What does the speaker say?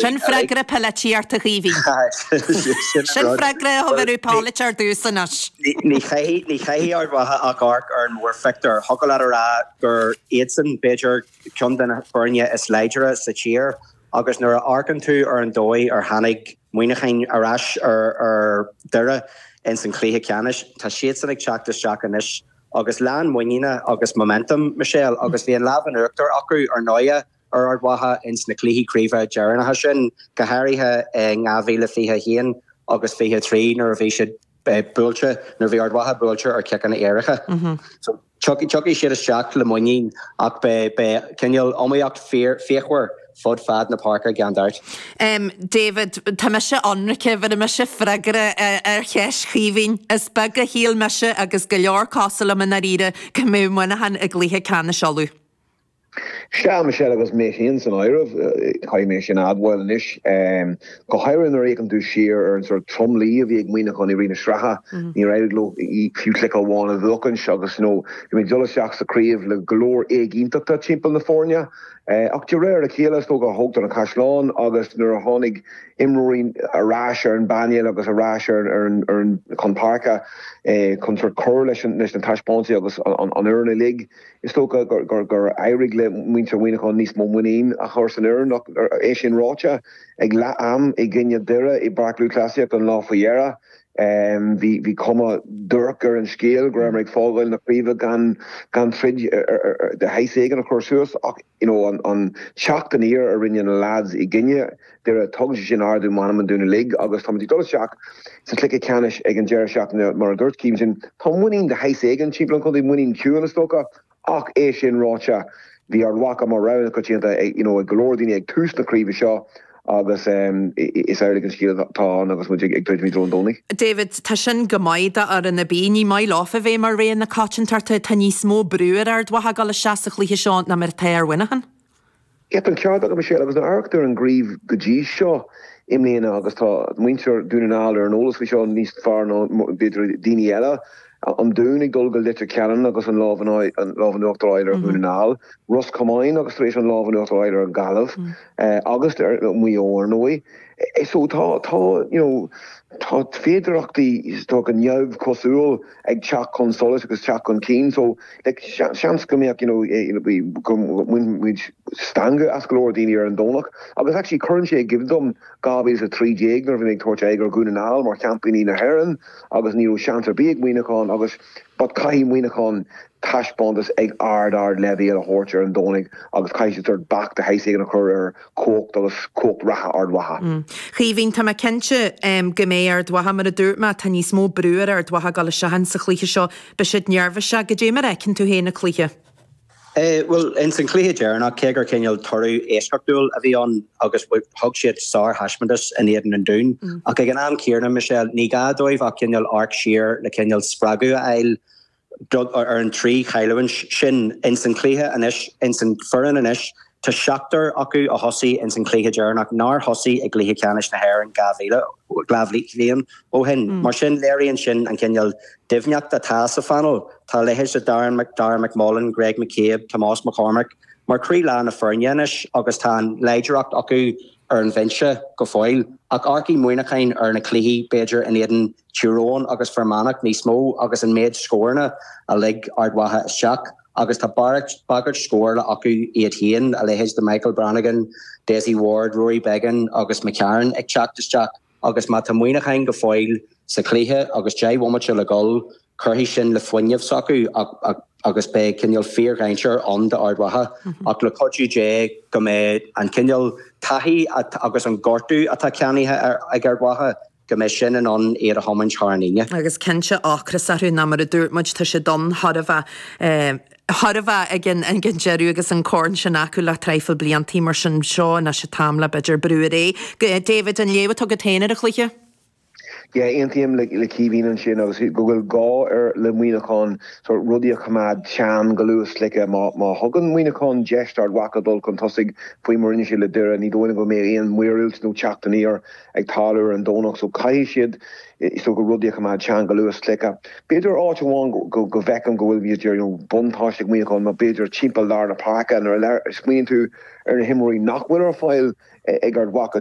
Sin freagra polaiteora, a Chaoimhín. Sin freagra a thug urú Pellet ar dtús anois. Ní chaithfidh Ard Mhacha ach amharc ar an mórphictiúr. Thiocfadh leat a rá gur iadsan, b'fhéidir, ceann de na foirne is láidre sa tír agus nuair a amharcann tú ar an dóigh ar tháinig Muíneacháin ar ais ar Dhoire ins an chluiche ceannais, tá siadsan ag teacht isteach anois agus lán muiníne agus momentum, Michelle, agus bhí an lámh in uachtar acu, ar ndóigh. ar Ard Mhacha ins na cluichí craoibhe deireanacha sin, go háirithe in 2021 agus 23 nuair a bhí siad buailte, nuair a bhí Ard Mhacha buailte ar chiceanna éirice. So, tiocfaidh siad isteach le muinín ach beidh cineál iomaíochta fíochmhar fud fad na páirce gan dabht. David, tá mise ionraice, bheir mise freagra ar cheist Chaoimhín. Is beag a shíl mise, agus go leor cosúil liom i ndáiríre, go mbeadh Muineachán i gcluiche ceannais Uladh. Sea, Michelle, agus mé féin san áireamh, caithfidh mé sin a admháil anois. Go háirithe nuair a fhéachann tú siar ar an sórt tromluí a bhí ag Muíneachán i rith na sraithe. Níor éirigh leo fiú cluiche amháin a bhuachaint agus, you know bhí muid ag dul isteach sa chraobh le go leor éiginnteachta timpeall na foirne. Ach de réir a chéile, is dócha, tógtar na caisleáin agus nuair a tháinig imreoirí ar ais ar an bpainéal agus ar ais chun páirce chun sórt cur leis na taispeántais agus an fhoireann uilig, Is dócha gur éirigh le muintir Mhuineacháin níos mó muinín a chur san fhoireann ach, é sin ráite, ag leath-am i gcoinne Dhoire i bPáirc Lúthchleasaíochta an lá faoi dheireadh, bhí cuma dhuairc ar an scéal go rabhamar ag fágáil na craoibhe gan troid de shaghas éigin a chur suas ach, you know an teacht aniar a rinne na lads i gcoinne Dhoire, tugann sé sin ardú meanman dúinn uilig agus táimid ag dul isteach sa chluiche ceannais ag an deireadh seachtaine mar a dúirt Cian ansin, tá muinín de shaghas éigin timpeall an chontae, muinín chiúin is dócha ach é sin ráite bhí Ard Mhacha mar rogha na coitianta you know ag go leor daoine ag tús na craoibhe seo. Agus is amhlaidh an scéal atá ann agus muid ag druidim i dtreo an Domhnaigh. David, Tá sin go maith d'fhoireann ar bith. Ní maith leofa bheith mar rogha na coitiantachta. Tá níos mó brú ar Ard Mhacha dul isteach sa chluiche seo ná mar atá ar Mhuineachán. Tá an ceart agat, Michelle, agus níl ach amharc ar an gcraobh go dtí seo i mbliana agus tá muintir Dhún na nGall ar an eolas faoi seo níos fearr ná b'fhéidir daoine eile. an Dún ag dul go Leitir Ceanainn agus an lámh in uachtar a fháil ar Dhún na nGall, Ros Comáin agus tar éis an lámh in uachtar a fháil ar an Ghaillimh agus ar Mhaigh Eo ar ndóigh. So tá you know tá féidearthachtaí atá go neamhchosúil ag teacht chun solais agus teacht chun cinn so like seans go mbeadh you know go mbainfidh muid stangadh as go leor daoine ar an Domhnach agus actually cuireann sé i gcuimhne dom 2013 nuair a bhí muid ag tabhairt aghaidh ar Dhún na nGall mar sheaimpíní na hÉireann agus ní raibh seans ar bith ag Muineachán agus but caithfidh Muineachán taispeántas ag ard, ard leibhéal a thabhairt ar an Domhnaigh agus caithfidh siad sort of bac de shaghas éigin a chur ar chumhacht agus cumhacht reatha Ard Mhacha. A Chaoimhín, tá mé cinnte go mbeidh Ard Mhacha, mar a dúirt mé, tá níos mó brú ar Ard Mhacha ag dul isteach ins an chluiche seo, beidh siad neirbhíseach, cad é mar a fheiceann tú féin an cluiche? Bhuel, ins an chluiche deireanach, cé gur cineál toradh eisceachtúil a bhí ann agus thug siad sár-thaispeántas in éadan an Dúin, ach ag an am céanna, Michelle, ní gá dóibh ach cineál amharc siar le cineál spreagadh a fháil ar an trí chailliúint sin ins an chluiche anois, ins an foireann anois Tá seachtar acu a thosaigh ins an chluiche deireanach nár thosaigh i gcluiche ceannais na hÉireann dhá mhíle, dhá bhliain ó shin. Mar sin, léiríonn sin an cineál doimhneachta atá sa phaineal. Tá a leithéid de Darren Mc, Darragh McMullen, Greg McCabe, Tomás McCormack mar croílár na foirne anois agus tá an láidreacht acu ar an bhinse go fóill. Ach amharcfaidh Muineachán ar na cluichí, b'fhéidir, in éadan Tír Eoghain agus Fear Manach níos mó agus an méid scóranna a lig Ard Mhacha isteach agus tá bagairt scórála acu iad féin, a leithéid de Michael Brannigan, Dessie Ward, Rory Beggan agus McCarron ag teacht isteach agus má tá Muineachán go fóill sa chluiche agus deich bhomaite le dhul, cuirfidh sin le fuinneamh s'acu agus beidh cineál fíordhainséar ann d'Ard Mhacha ach le cuidiú Dé go mbeidh an cineál taithí agus an gortú atá ceannaithe ag Ard Mhacha go mbeidh sin in ann iad a thiomáint thar an líne. Agus cinnte, ocras orthu, ná mar a dúirt muid, tá sé donn, thar a bheith, ag an deireadh agus an corn sin acu le traidhfil blianta. Mar sin, seo anois an t-am le, b'fhéidir, brú ar aghaidh. David, an léamh atá agat féin ar an chluiche? Yeah, aontaím le Caoimhín ansin agus go bhfuil gá ar le Muineachán sort rudaí a choimeád teann go luath sa chluiche. Má má thugann Muineachán deis d'Ard Mhacha dul chun tosaigh faoi mar a rinne siad le Doire, ní dóigh liom go mbeidh aon mhíorúilt nó teacht aniar ag tarlú ar an Domhnach so caithfidh siad is dócha rudaí a choimeád teann go luath sa chluiche. B'fhéidir áit amháin go go bhfeicim go bhfuil b'fhéidir you know buntáiste ag Muineachán ná b'fhéidir timpeall lár na páirce nuair a smaoiníonn tú ar na himreoirí nach bhfuil ar fáil ag Ard Mhacha